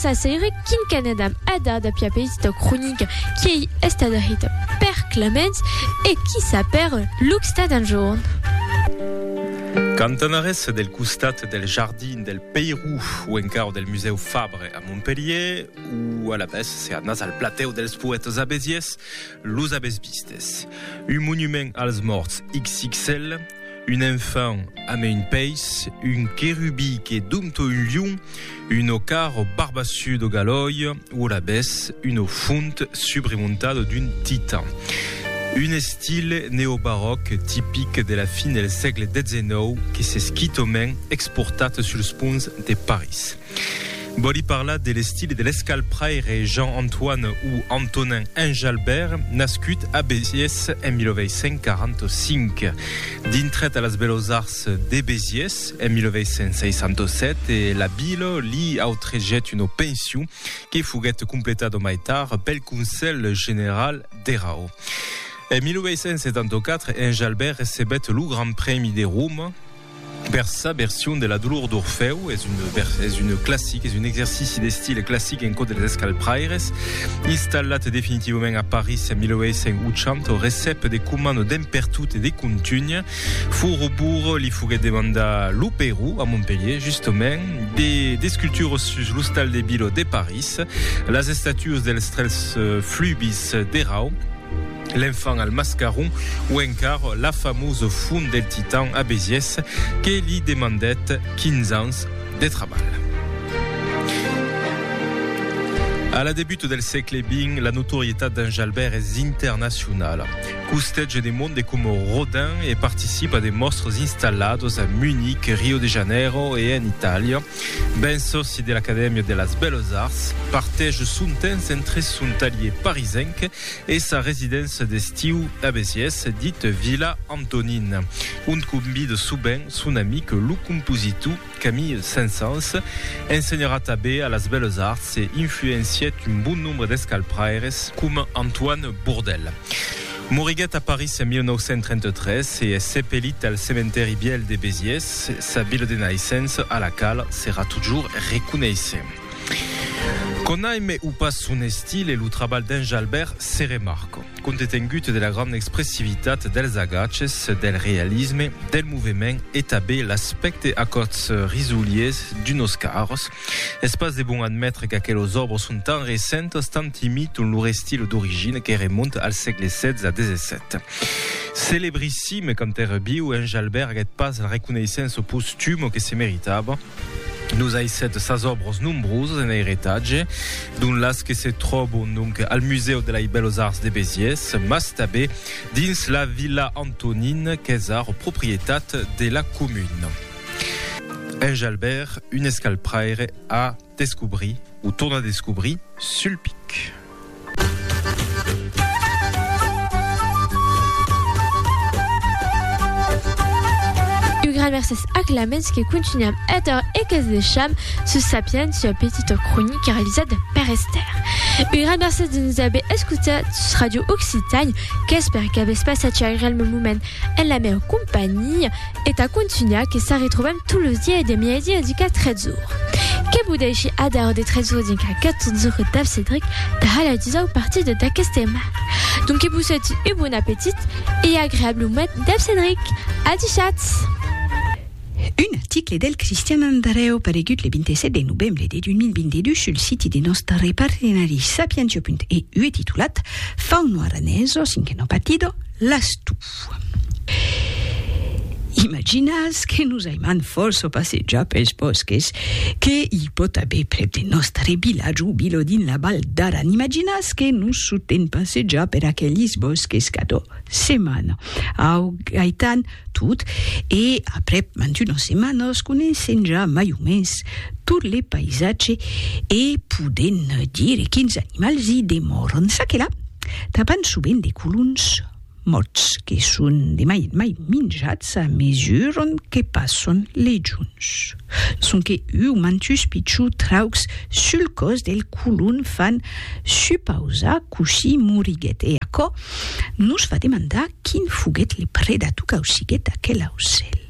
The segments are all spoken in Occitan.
sa seire quincanet am ada da pia petita cronica qu'ei estada heta per Clemens e qui sa per Luxta d'un jorn. Cantanarès del costat del jardin del Peirou o encara del musèu Fabre a Montpellier, O alavetz se anatz al platèu dels poètes abesiers, los avètz vistes. Un monument als mòrts XXL, un enfant amé un peis, un querubí que dompto un lion, un ocar o barbassut o galòi o alavetz una font subremontada d'un titan. Un estil neobaròc tipic de la fin del sègle 19 que s'es quitament exportat suls ponts de París. Vòli parlar de l'estil e de l'escalh pr'aire Jean Antoine o Antonin Enjalbert, nascut a Besiés en 1845. Dintret a las Belós Arts de Besiés en 1867 e la Vila li autregèt una pension que foguèt completada mai tard pel Conselh General dera o. En 1874, Enjalbert recebèt lo Grand Prèmi de Roma, Per sa version de la dolor d'Orfèu, es un vers, es un classic, es un exercici d'estil classic en cò dels escalpraires. Installat definitivament a París en 1880, au recep de comand d'en pertot e de contunh, Fourbour li foguèt demandar lo Perú, a Montpelhier justament, de d'escultures sus l'ostal de Bilhaud de París, las estatues dels tres flubis d'Erau, L'enfant al mascaron o encar la famós font del Titan a Besiès que li demandèt 15 ans de trabalh. A la debut del sègle xx, la notorietat d'en Jalbèrt es internacionala. Costètge de monde coma Rodin e participa de mòstres installados a Munic, Rio de Janeiro e en Itàlia. Ben sòci de l'Acadèmia de las Belles Arts, partège son temps entre son talhier parisenc e sa residéncia d'estiu a Besiés, dit Vila Antonin, ont convide sovent son amic lo compositor Camille Saint-Saëns. Ensenharà tanben a las Belles Arts e influencièt un bon nombre d'escalpraires coma Antoine Bourdelle. Moriguèt a París en 1933 e es sepelit al cementèri vièlh de Besiés, sa vila de naissença a la quala serà totjorn reconeissent. Conaime o pas son estil e lo trabalh d'en Jalbèrt se remarca. Compte tengut de la granda expressivitat dels agaches, del realisme, del movement e tabé l'aspècte acòts risoliers d'unos carros, es pas de bon admetre qu'aquelos òbres son tan recentas, tant imiton lor estil d'origina que remonta al sègle XVI-XVII. Celebrissime quand èra viu, en Jalbèrt aguèt pas la reconeissença postuma que se meritava. Nos aissèt sas òbros nombrosas en airetatge, dont las que se tròbon donc al Musèu de lei Bèlos Arts de Besiés, mas tabé dins la Vila Antonin qu'es ara proprietat de la comuna. En Jalbèrt, un escalpraire a descobrit, o torna descobrir, sul pic. Gramerses aclaments que continuam èter e que's deisham sus Sapiens sua petita cronica realizada per Esther. Un gran mercés de nous haver escutat sus Radio Occitània, qu'espère qu'avètz passat un agreable moment en la meva companhia. E tà contunhar que s'arretrobam tot los dies de mièdi a dica 3 ora. Que vos dèishi ad'aur de 3 ora dinca 14 ora dab Cedric tà la disau partida d'aqueste aimal. Donc que vos sòti un bon apetit e agreable moment dab Cedric. A dichatz! Un article del Cristian Andreu paregut le 27 de novembre de 2022 sul siti de nòstre partenari Sapientio.eu e titulat Fauno aranés o cinqueno partido, L'Astú. Imaginatz que nos aimam fòrça passejar pels bòsques que i pòt aver prèp de nòstre vilatge o vila dins la Val d'Aran. Imaginatz que nos sotem passejar per aquelis bòsques cadó setmana. Au, gaitam tot e aprèp mantunas setmanas coneissèm ja mai o mens tot le païsatge e podèm dire quins animals i demòran. Ça que la, trapam sovent de colons, Mots que son de mai en mai minjats a mesuron que passon lei juns. Sonque uu mantus pichou traucs sul còs del colon fan supausar cossí moriguet e aquò nos fa demandar quin foguet le predator qu'ausiguet aquel aucèl.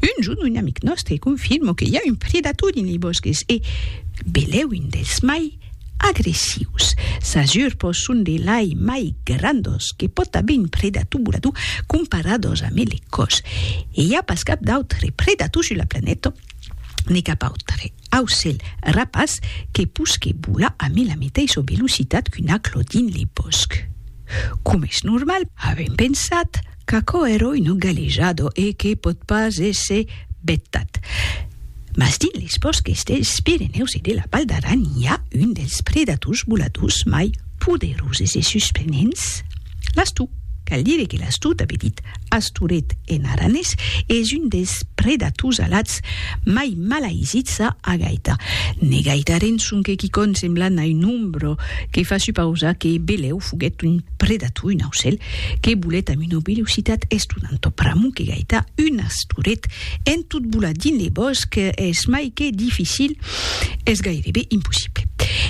Un jorn un amic nòstre confirmò que i a un predator dins lei bòsques e belèu un dels mai agressius. Sas urpos son de lai mai grandos que pòt aver un predator volador comparados a melecòs. E i a pas cap d'autre predator sus la planeta, ne cap autre aucèl rapaç que posque volar amé la meteissa velocitat qu'un aclò dins le bòsc. Coma es normal, avèm pensat, Qu'aquò èroi no galejado e que pòt pas èsser vetat. Mas dins les bòsques dels Pirenèus e de la Val d'Aran i a un dels predators voladors mai poderoses e susprenents, l'astou. Cal dire que l'astou, tanben dit asturet en aranés, es un dels predators alats mai malaisits a agaitar. Ne gaitaren sonque quicòm semblant a un ombro, que fa supausar que Belèu foguèt un. predator, un aucèl, que bolet amb una velocitat estonanta o pr'amor que gaita un astoret en tot bolar dins le bòsc es mai que dificil, es gairebe impossible.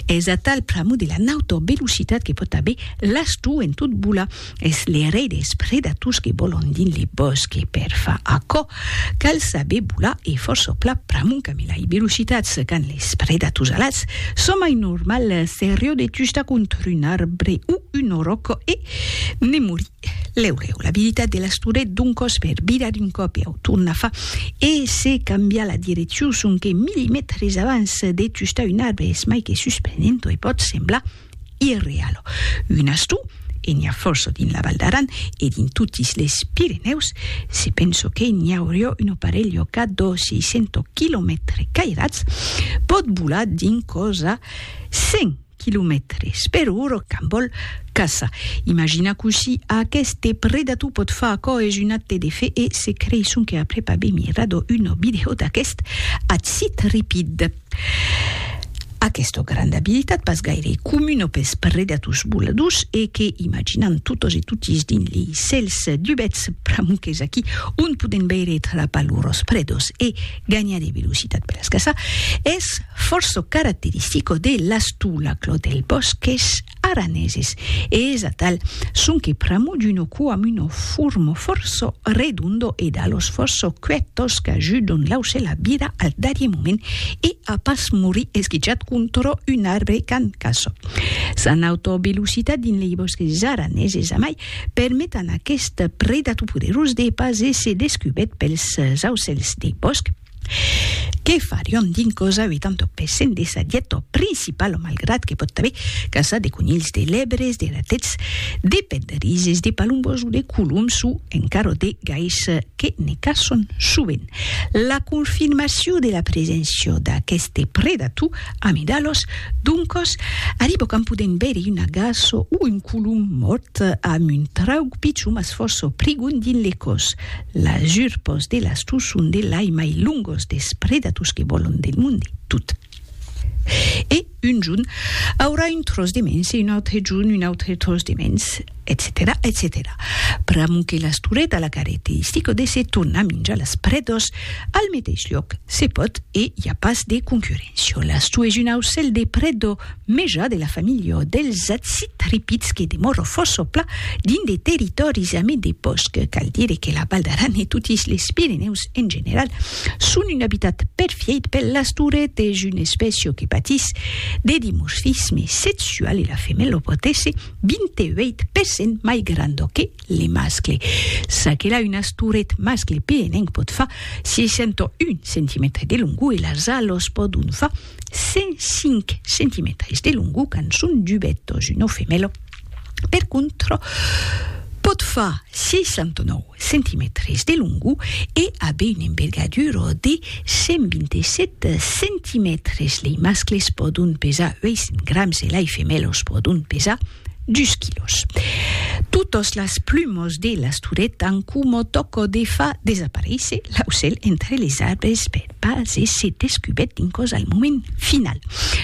Es atal pr'amor de la nauta velocitat que pòt aver l'astor en tot bolar. Es le rei dels predators que vòlan dins le bòsc e per far aquò Cal saber bolar e fòrça au plat pr'amont camina i velocitats quand les predators alats son mai normal seriò de tujar contra un arbre o un oròc e ne morir lèu lèu. L'abilitat de l'asturet d'un còs per virar un còp e au tornar fa e se cambiar la direccion sonque milimètres abans de tujar un arbre es mai que suspenent e pòt semblar Irrealo. Un astu, e n'i a fòrça dins la Val d'Aran e dins totis les Pirenèus, se penso que n'i aurió un oparelh llocat d'ò 600 quilomètres cairats, pòt volar dins còs a 100 quilomètres per ora quand vòl caça. Imagina cossí aqueste predator pòt far aquò es un acte de fe e se creisson que après pas be mirar d'ò una vidèo d'aquest acitripid. Aquesta granda abilitat pas gaire comuna pes predators voladors e que imaginam totas e totis dins li cèls dubets pramuques aquí on podem veire e trapar lors predos e ganhar de velocitat per las caçar es fòrça caracteristica de l'astolaclò del bòsc qu'es araneses, e es atal sonque pramo d'uno coamuno formo forço redondo e d'alos forço cuetos qu'ajudon l'aucèl a virar al darrier moment e a pas morir esquichat contra un arbre qu'an caçat. S'an autovelocitat dins lei bòsques araneses amai permet an aquest predator poderós de pas èsser descubèt pels aucèls de bòsc, que farion dins cosa 80 per cent de sa dieta principala malgrat que pòt aver caçat de conilhs de lèbres de ratets de penderises de palombòs o de coloms o encara de gais que ne caçon sovent la confirmacion de la preséncia d'aqueste predator amidalós doncòs arriba quand podèm veire una gaça o un colom mòrt amb un trauc pichon mas fòrça prigon dins le còs Las urpos de las tus son de lai mai longos des predatus que vòlon del monde tot. E un jorn aurà un tròç de mens e un autre jorn un autre tròç de mens, etcetèra, etcetèra. Pr'amor que las turet a la caracteristica de se tornar minjar las predas al meteis lloc, se pòt e i a pas de concurréncia. Las tus es un aucèl de preda Meja de la familha dels acitripids que demòro fòssopla dins de territòris amid de bòsc. Cal dire que la Val d'Aran e totis les Pirenèus en general son un abitat perfièit per las toretes, una espècia que patís de dimorfisme sexual e la femèla pòt èsser 28 per cent mai granda que le mascle. Ça que la un asturet mascle pirenenc pòt far 61 centimètres de longor e las alas pòdon far 105 centimetris de longu quand son dubet dos una femela, per contra pòt far 69 centimetris de longu e aver una envergadura de 127 centimetris. Lei mascles pòdon pesar 800 grams e lei femelas pòdon pesar dus quilòs. Totas las plumas de l'Astoret an coma tòca de far desaparéisser l'aucèl entre les arbres per pas èsser descubèrt dins còs al moment final.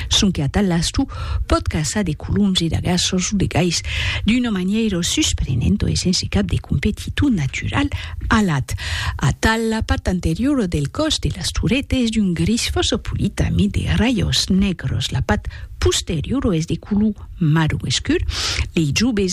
Sonque atal l'astor pòt caçar de coloms e de garças o de gais d'una manièira susprenenta e sense cap de competitor natural, Alat, atal la part anteriora del còs de las toretas es d'un gris fòrça polit amid de rajors negros, la part posteriora es de color marron escur, lei jubes